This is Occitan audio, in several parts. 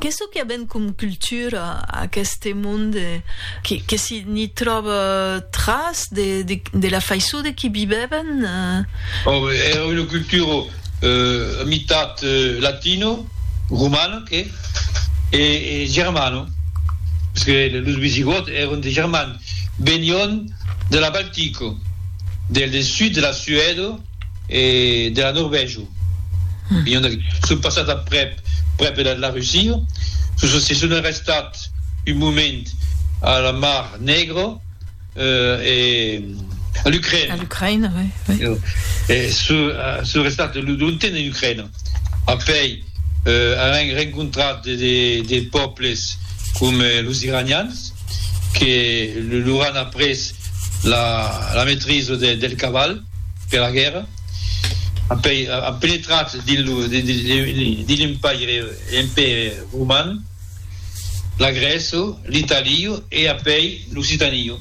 Qu'es çò que avèm com cultura aqueste monde que si n'i tròba tras de la faiçon de qu'i vivèvan? Era una cultura a mitat latino, romana que e germana, parce que los visigòts èran de Germania, venián de la Baltica, del sud de la Suèda, E de la Norvègia. Vinhon d'aquí. Son passat aprèp, prèp de la Russia. Se son arrestat un moment a la Mar Negra e a l'Ucraina. A l'Ucraina, oui, oui. E son restat longtemps en Ucraina. Après, an rencontrat de pòbles coma los Iranians que lor an après la maîtrise del caval. per la guèrra, an penetrat dins l'Empaire roman, la Grèça, l'Italia e apèi l'Occitania,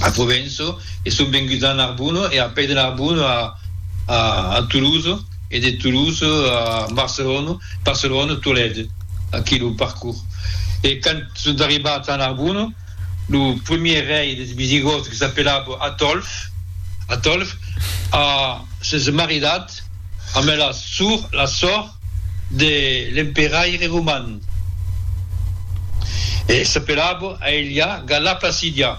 a Provença, e son venguts a Narbona e apèi de Narbona a Toulouse e de Toulouse a Barcelona, Barcelona, Tolède, aquí lo parcours. E quand son arribats a Narbona, Lo premier rei des Visigòts que s'apelava Atòlf, Atolf, a ses maridat amb la sor, la sòr de l'emperaire roman e s'apelava Aelia Galla Placidia.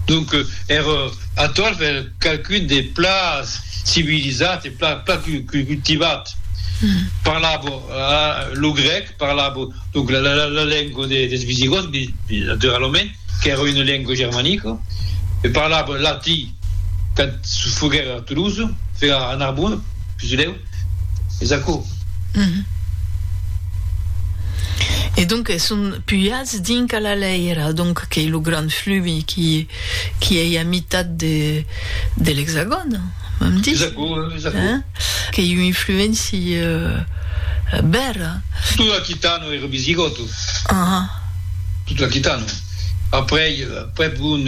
Donc ère atòl per qualqu'un de pla civilizat e pla pla cultivat. Parlava lo grèc, parlava donc la la la lengua de des visigòts, naturalament, qu'ère una lengua germanica, e parlava latí. Quand foguèr a Toulouse, foguèr a Narbonne, pisilèu, es aquò. E donc son pujats dinc a la Lèira, donc qu'ei lo grand flumi qui ei a mitat de l'Exagòn, vam dir? Es aquò, es aquò. Qu'ei un influenci bèra. Tot l'Aquitano èra visigòto. Tot l'Aquitano. Après, prèp un.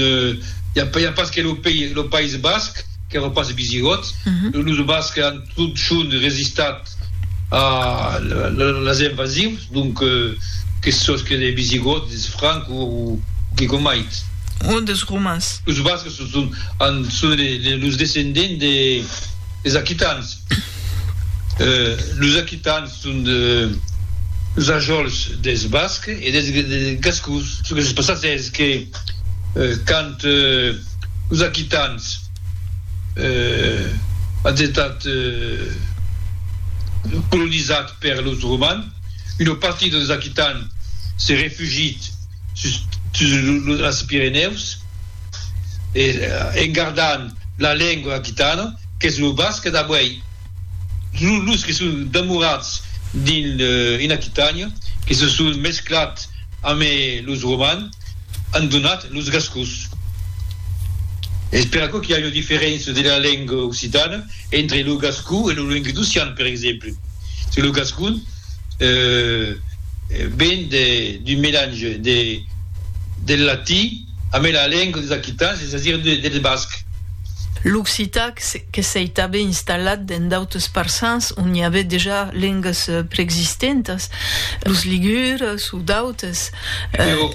i a pas que lo pei, lo País Basc, qu'èra pas visigòt, los Bascs an totjorn resistat a las invasius, donc que sos que de visigòt, des franc o que comait. O des romans. Los Bascs son son an son los descendents des aquitans, los aquitans. Son deus ajòls deth basc e deth gascon. Çò que se passèc es que quand los aquitans an estat colonizats per los romans, una partida deus aquitans s'es refugit sus es Pirenèus en gardant la lengua aquitana qu'es lo basc d'avuèi. Los que son demorats dins en Aquitània, que se son mesclats amé los romans, an donat los gascons. Es per aquò qu'i a una diferéncia de la lenga occitana entre lo gascon e lo languedocian, per exemple, se lo gascon ven d'un melange de del latin, Amb e la lenga des aquitans, es a dire dels bascs. L'occitan que s'ei tanben installat dens d'autres parçans ont i avè dejà lengas preexistentas, los ligures o d'autres. Però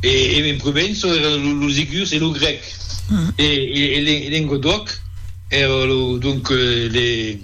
en Provença èran los ligures e lo grèc, e en Lengadòc èra donc le.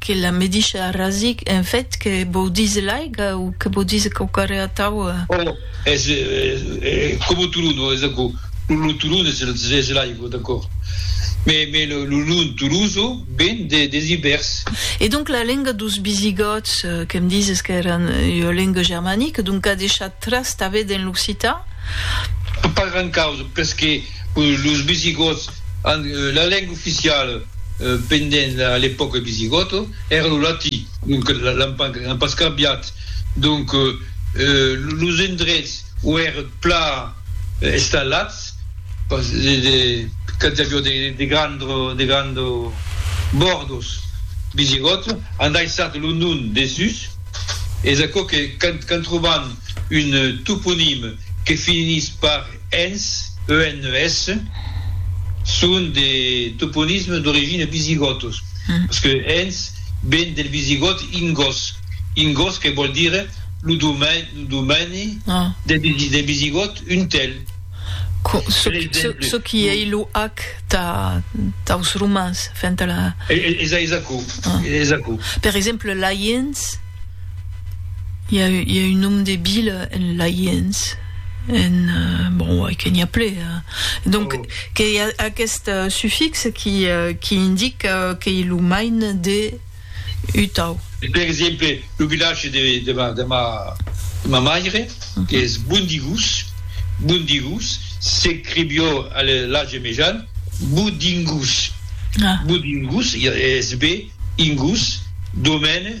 Que la me diche arrasic, en fait, que vò dise l'aiga o que vò dise quauquarre atau? Ò, es coma o Tolon, ò, es aquò. Lo Tolon es l'aigua, d'acòrd. Me, me lo nom Toloso ven des Ibèrs. E donc la lenga dos Bisigòts, que me dises qu'èran ua lenga germanica, donc qu'a deishat tras tanben en l'occitan? Pas gran causa, perque Los Visigòts an la lenga oficiala pendent a l'epòca visigòta èra lo latí, donc l'an pas cambiat. Donc los endrets o èran plan estalats pas quand i aviá de grands bòrdos visigòts an daissat lo nom dessús. Es aquò que quand tròban un toponim que finís pas Ens, ENES, son de toponismes d'origine visigòtos, parce que Ens ven del visigòt Ingos, Ingos que vòl dire lo domeni del visigòt un tèl. Çò qui ei lo ac taus romans fent la. Es aquò. Per exemple, Laiens. i a, i a un nom de vila en Laiens, en, bon, uèi que n'i a ple, hein. Donc, oh. que i a aquest sufix qui, qui indique qu'ei lo main de Utau. Per exemple, lo vilatge de, de ma, de ma, de ma maire, qu'es Bondigús, Bondigús, s'escrivió a l'Age Mejan, Boudingús. Ah. Boudingús, e es be, ingús, domène,